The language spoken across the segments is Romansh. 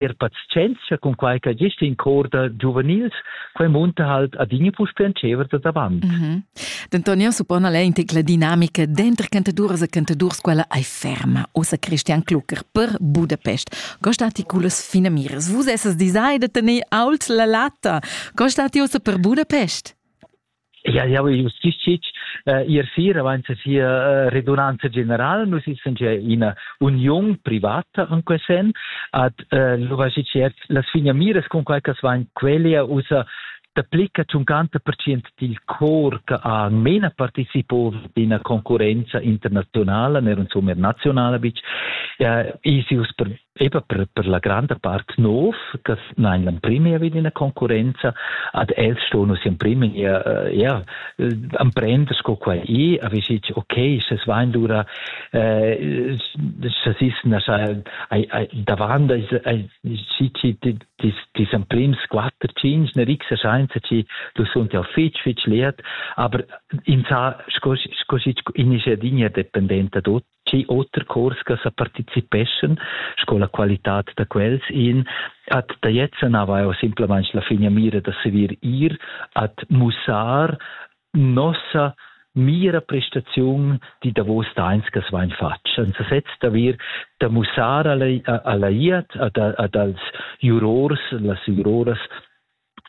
er pazienzia cun quai che gest in cor da giuvenils, quai munta halt adina puspè en tschever da davant. Mm -hmm. Denton, io suppone l'intic la dinamica dentro cantadores e cantadors quella ai ferma, ossa Christian Klucker per Budapest. Costati culas fine miras. Vus essas design de tenere ault la latta. Costati ossa per Budapest? Ja, jau justizic eh, ir sir avant sia eh, redunanza general. Nus essan gia ina union privata in quest sen ad eh, l'uvagic las finiamiras con quai che van quelle usa t'applica 50% dil cor che ha mena participo d'ina concorrenza internazionale, ner insomma nazionale bic, eh, e si us per ei va per, per la granda part nov, che nein l'emprim vi d'ina concurenza, ad els sto nus emprim ja, ja emprender sco quai i, a vi sich, okay, se svein dura, eh, se ist davant sich dis emprim squatter cinc, ne rixa scheinza ci, du sunt ja fitch, fitch leert, aber in sa, sco, sco sich in is ja digna dependenta dot, Tgi oter chors che sa participeschan sco la qualitad da quels in at taiezza nava eu simplamaing la finamira da saver ir at mussar nossa mira prestaziun di davos tains che vain fatg senza sez d'avir da mussar alla, alla iat ad, ad als jurors las juroras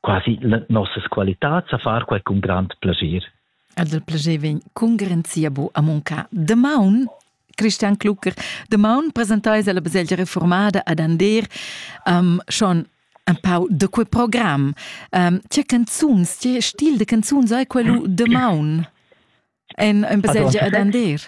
quasi nossas qualitads a far quai cun grand plascher. Ed il plascher vegn cun garanzia bu a muncar. Damaun Christian Klucker, damaun presentais alla baselgia reformada ad Ander um, schon un pau de quei programm. Um, tge canzuns, tge stil de canzuns hai quello demaun en, in baselgia allora, ad Ander?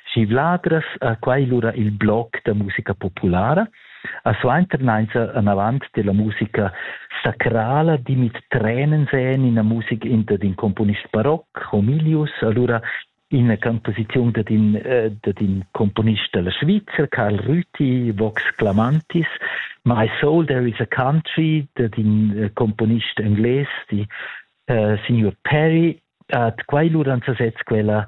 Schi vladras ha quai lura il bloc da musica populara, a suenternainza anavant della musica sacrala dimit trenen sen ina musica inter d'in componist baroc, Homilius, allura ina composiziun dad in, eh, dad in componist della Svizzera, Karl Rüthi, Vox Clamantis, My Soul There Is a Country, dad in eh, componist engles, di eh, signor Perry, at quai luran sasez quella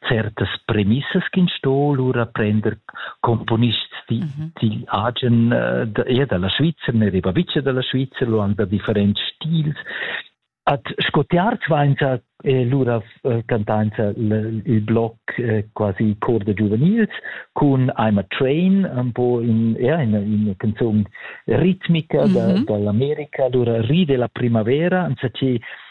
certas premissas ch'ins sto lura prender componists di, mm -hmm. digl agen uh, da, er dalla Svizzera, ne dei babice dalla Svizzera, lo han da differents stils. At scotiar vainsa eh, lura eh, cantainsa il bloc eh, quasi cor de giuvenils cun I'm a Train, un po in, ja, in, in canzone ritmica mm -hmm. da, mhm. dall'America, lura ride la primavera, anza che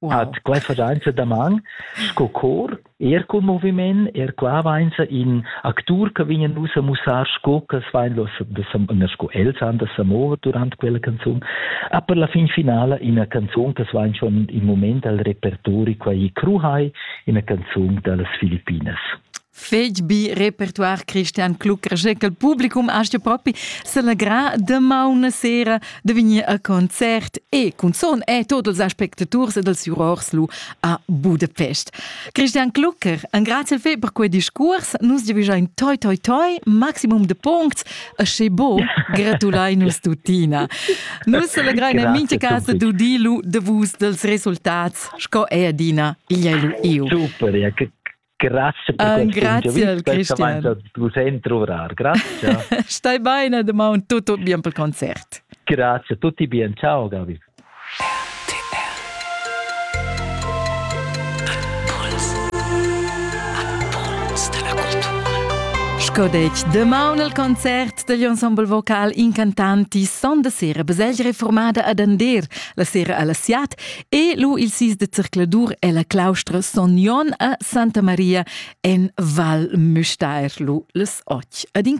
Wow. Hat quai fadainza daman sco cor, er cun moviment, er qua vainza in actur che vegnan nus a mussar sco che vain sco els han da sa mover durant quella canzun, a per la fin finala ina canzun che vain schon in moment al repertori quai Kruhai, ina canzun dallas Filippinas. fetg bi repertoire Christian Klucker che il publicum astga propi celebrar de mauna sera de vegnir a concert e cun son e tots els aspectaturs ed els jurors lu a Budapest. Christian Klucker, en grazie fe per quei discurs, nus devigein toi toi toi maximum de puncts e sche bo gratulai nus tutina. Nus celebrein in mincha casa dudilu de vus dels resultats, sco e adina igl io. Super, ja, che Grazie per uh, grazie, Christian. Vus entruvar. Grazie. Stai bene, domani tutto bien per il concerto. Grazie, tutti bien. Ciao, Gabi. Sco detg, demaun al concert degl ensemble vocal incantanti son da sera besegl reformada ad Ander, la sera alla Siat E lu il sis de zercladur e la claustra Son Jon a Santa Maria en Val Müstair lu les och. Ad in